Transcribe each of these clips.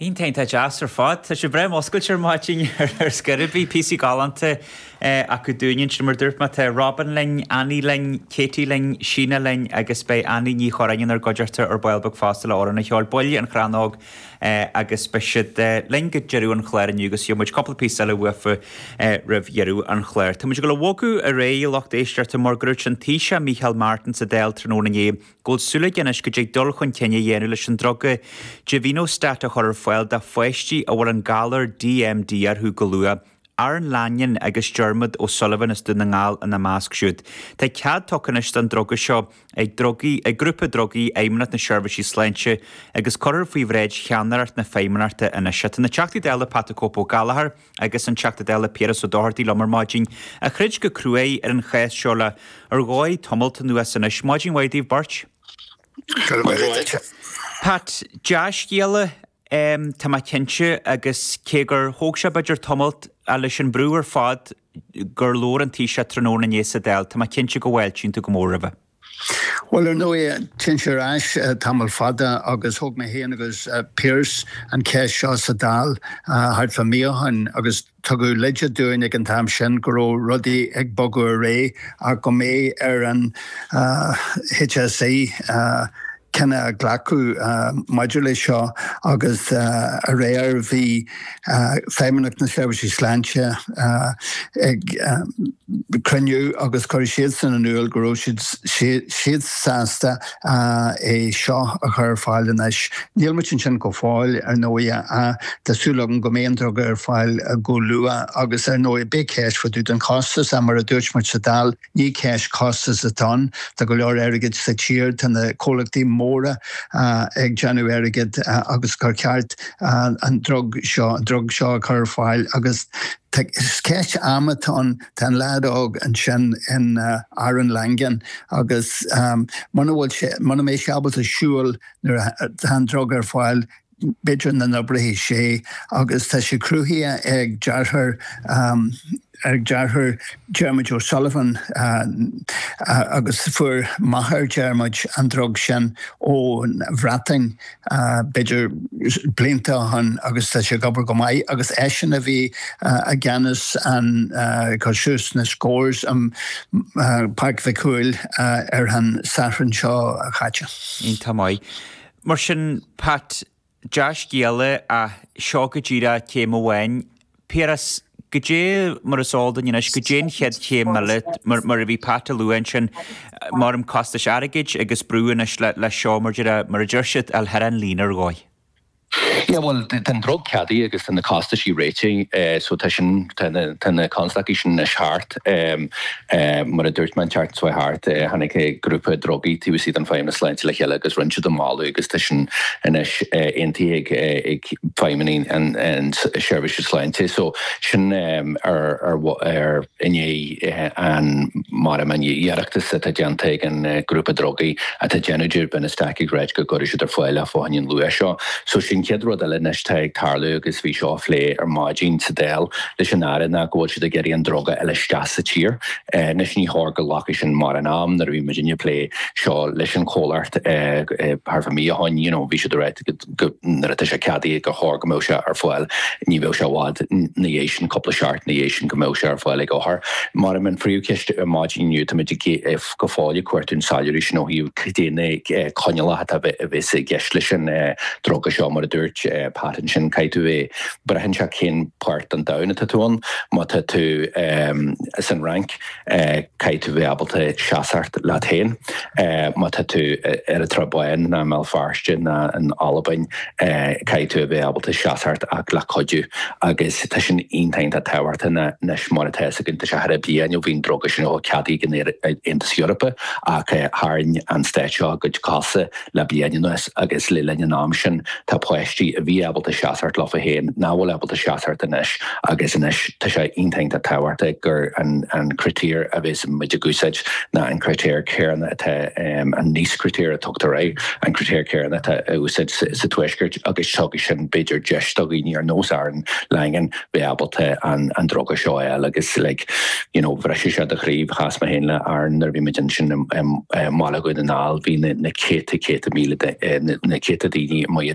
Iontach, iontach deas ar fad. Tá sibh breá múscailte ar maidin ar scor ar bith. Píosaí galánta acu dúinn ansin, mar dúirt mé. Tá Robyn linn, Annie linn, Katie linn, Sheena linn agus beidh Annie Ní Churráin inár gcuideachta ar ball beag fosta le hamhrán a cheol, baill an Chrannóg agus beidh siad linn go deireadh an chláir inniu agus gheobhaidh muid cúpla píosa eile uafa roimh dheireadh an chláir. Tá muid ag dul a bhogadh ar aghaidh, a lucht éisteachta, mar go ndúirt an Taoiseach Mícheál Martin sa Dáil tráthnóna inné, go bhfuil súil aige anois go dtig dul chun cinn a dhéanamh leis an druga Givinostat a chur ar fáil do pháistí a bhfuil an galar DMD orthu go luath, Aaron Langan agus Diarmuid O'Sullivan as Dún na nGall ina measc siúd. Tá cead tugtha anois don druga seo ag drugaí, ag grúpa drugaí Fheidhmeannacht na Seirbhísí Sláinte agus cuirfear faoi bhráid cheannaireacht na Feidhmeannachta anois. Tá na Teachtaí Dála Pat 'the Cope' Ó Gallchóir, agus an Teachta Dála Piaras Ó Dochartaigh liom ar maidin, a throid go cruaidh ar an cheist seo le, ar ndóigh, tamalt anuas anois. Maidin mhaith daoibh beirt. Go raibh maith agat. Pat, Dea-scéala, tá mé cinnte, agus cé gur thóg sé, b'fhéidir, tamalt, ach leis an mbrú ar fad gur labhair an Taoiseach tráthnóna inné sa Dáil, tá mé cinnte go bhfáiltíonn tú go mór roimhe. Bhuel, ar ndóigh, téann sé ar ais tamall fada agus thóg mé féin agus Pearse an cheist seo sa Dáil thart fá mí ó shin agus tugadh leide dúinn ag an t-am sin go raibh rudaí ag bogadh ar aghaidh ach go mbeidh ar an HSE cinneadh a ghlacadh maidir leis seo agus aréir bhí Feidhmeannacht na Seirbhísí Sláinte ag cruinniú agus chuir siadsan in iúl go raibh siad sásta é seo a chur ar fáil anois. Níl muid ansin go fóill ar ndóigh ach tá súil agam go mbeidh an druga ar fáil go luath agus ar ndóigh beidh ceist fá dtaobh den chostas ach mar a dúirt muid sa Dáil, Ní ceist costas atá ann, tá go leor airgid sa tír, tá na comhlachtaí móra ag déanamh airgid agus gur cheart an drug seo, drug seo, a chur ar fáil agus is ceist ama atá ann. Tá an leaid óg ansin, Aaron Langan agus muna bhfuil sé, muna mbeidh sé ábalta siúl nuair atá an drug ar fáil, b'fhéidir nach n-oibreoidh sé agus tá sé cruthaithe ag deartháir ag deartháir Diarmuid O'Sullivan agus fuair máthair Diarmuid an drug sin ón Bhreatain b'fhéidir blianta ó shin agus tá sé ag obair go maith agus eisean a bhí i gceannas ag cur suas na scores i Páirc Mhic Cumhaill ar an Satharn seo chaite. Tá maith. Mar sin, Pat, dea-scéal é ach seo go díreach céim amháin. Piaras, go dtí mar is eol duinn anois, goidé an chéad chéim eile? Mar a bhí Pat ag lua ansin, mairim costais airgid agus brú anois leis seo, mar a deir siad, ag deireadh an líne ar dhóigh. Yeah, bhuel, tá an druga ceadaithe agus tá na costaisí réitithe, so tá sin, tá na constaicí sin anois thart. Mar a dúirt mé, an tseachtain seo a chuaigh thart, tháinig grúpa drugaí taobh istigh an Feidhmeannas Sláinte le chéile agus rinne siad an moladh agus tá sin anois aontaithe ag feidhmeannaigh an tseirbhíse sláinte. So, sin i ndiaidh an margadh margaíochta atá déanta ag an grúpa drugaí atá déanamh an givinostat ag ráit go gcuirfidh siad ar fáil faoi chionn an luach seo. So, sin chéad rud eile anois atá ag tarlú agus bhí seo á phlé ar maidin sa Dáil. leis an Aire ná go bhfuil siad ag iarraidh an druga a fháil isteach sa tír. Anois ní chóir go nglacfaidh sin mórán am, nuair a bhí muidne ag plé seo leis an chomhlacht thar mhí ó shoin you know bhí siad a rá go nuair atá sé ceadaithe gur chóir go mbeadh sé ar fáil, ní bheadh sé i bhfad 'na dhiaidh sin, cúpla seachtain 'na dhiaidh sin go mbeadh sé ar fáil ag othar. Mar sin an phríomhcheist ar maidin inniu tá muid go fóill ag cuartú an soiléiriú sin ó thaobh caidé na coinniollacha atá a bheith a bheas i gceist leis an druga seo mar a dúirt Pat ansin caithfidh tú é Braitheann sé cén páirt den domhan atá tú ann. Má tá tú san Fhrainc, caithfidh tú bheith ábalta seasamh leat féin. Má tá tú i nDoire, ar an tSrath Bán ná i mBéal Feirste ná in Albain, caithfidh tú a bheith ábalta seasamh ach le cuidiú. Agus tá sin iontach tábhachtach anois mar atá a fhios againn. Tá sé thar bliain ó bhí an druga sin ceadaithe ag an Aontas Eorpaigh ach tharraing an stát seo a gcuid cosa Le bliain anuas agus le linn an am sin tá páistí a bhí ábalta seasamh leofa féin nach bhfuil ábalta seasamh anois agus anois tá sé iontach tábhachtach gur an critéir a bheas muid ag úsáid ná an critéir céanna atá, an Nice critéir a tugtar air, an critéir céanna atá á úsáid sa Tuaisceart agus tugann sin b'fhéidir deis do dhaoine ar nós Aaron Langan, bheith ábalta an druga seo a fháil agus like you know bhriseadh sé do chroí, chas mé féin le Aaron nuair a bhí muid ansin i mBaile Dhún na nGall, bhí na céadta míle de, na céadta daoine amuigh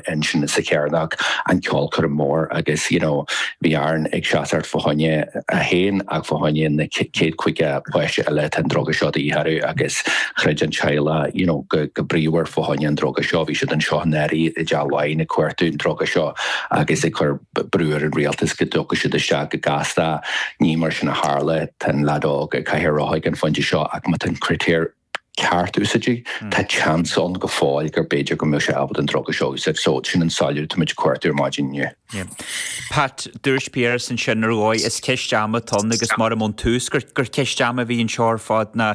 ansin sa Chearnóg ag an ceolchoirm mór agus you know bhí Aaron ag seasamh fá choinne é féin ach fá choinne na céad caoga páiste eile atá an druga seo de dhíth orthu agus throid an teaghlach you know go bríomhar fá choinne an druga seo, bhí siad anseo i ndáirí i dTeach Laighin ag cuartú an druga seo agus ag cur. brú ar an rialtas go dtiocfadh siad isteach go gasta. Ní mar sin a tharla, tá an leaid óg i gcathaoir rotha ag an phointe seo ach má tá an critéir ceart úsáidte, tá seans ann go fóill gur b'fhéidir go mbeadh sé ábalta an druga seo a úsáid. So, sin an soiléiriú atá muid ag cuartú ar maidin inniu. Pat, mar a dúirt Piaras ansin ar dhóigh, is ceist ama atá ann agus mairim ón tús gur ceist ama a bhí anseo ar fad ná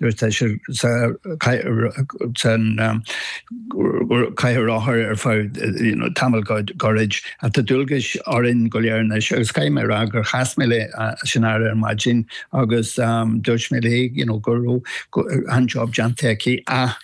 Nuair atá siad sa chathaoir rotha ar feadh tamall gairid, tá dualgais orainn go léir anois agus caithfidh mé a rá gur chas mé le Shannara ar maidin agus dúirt mé léi go raibh an-jab déanta aici.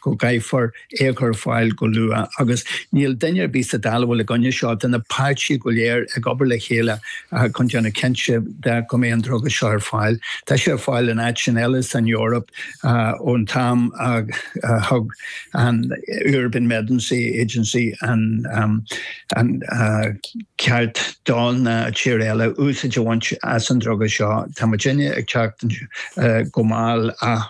go gcaithfear é a chur ar fáil go luath agus níl duine ar bith sa Dáil a bhfuil i gcoinne seo, tá na páirtithe go léir ag obair le chéile chun déanamh cinnte de go mbeidh an druga seo ar fáil. Tá sé ar fáil in áiteanna eile san Eoraip ón t-am a thug an European Medicines Agency an ceart do na tíortha eile úsáid a bhaint as an druga seo. Tá muidne ag teacht go mall ach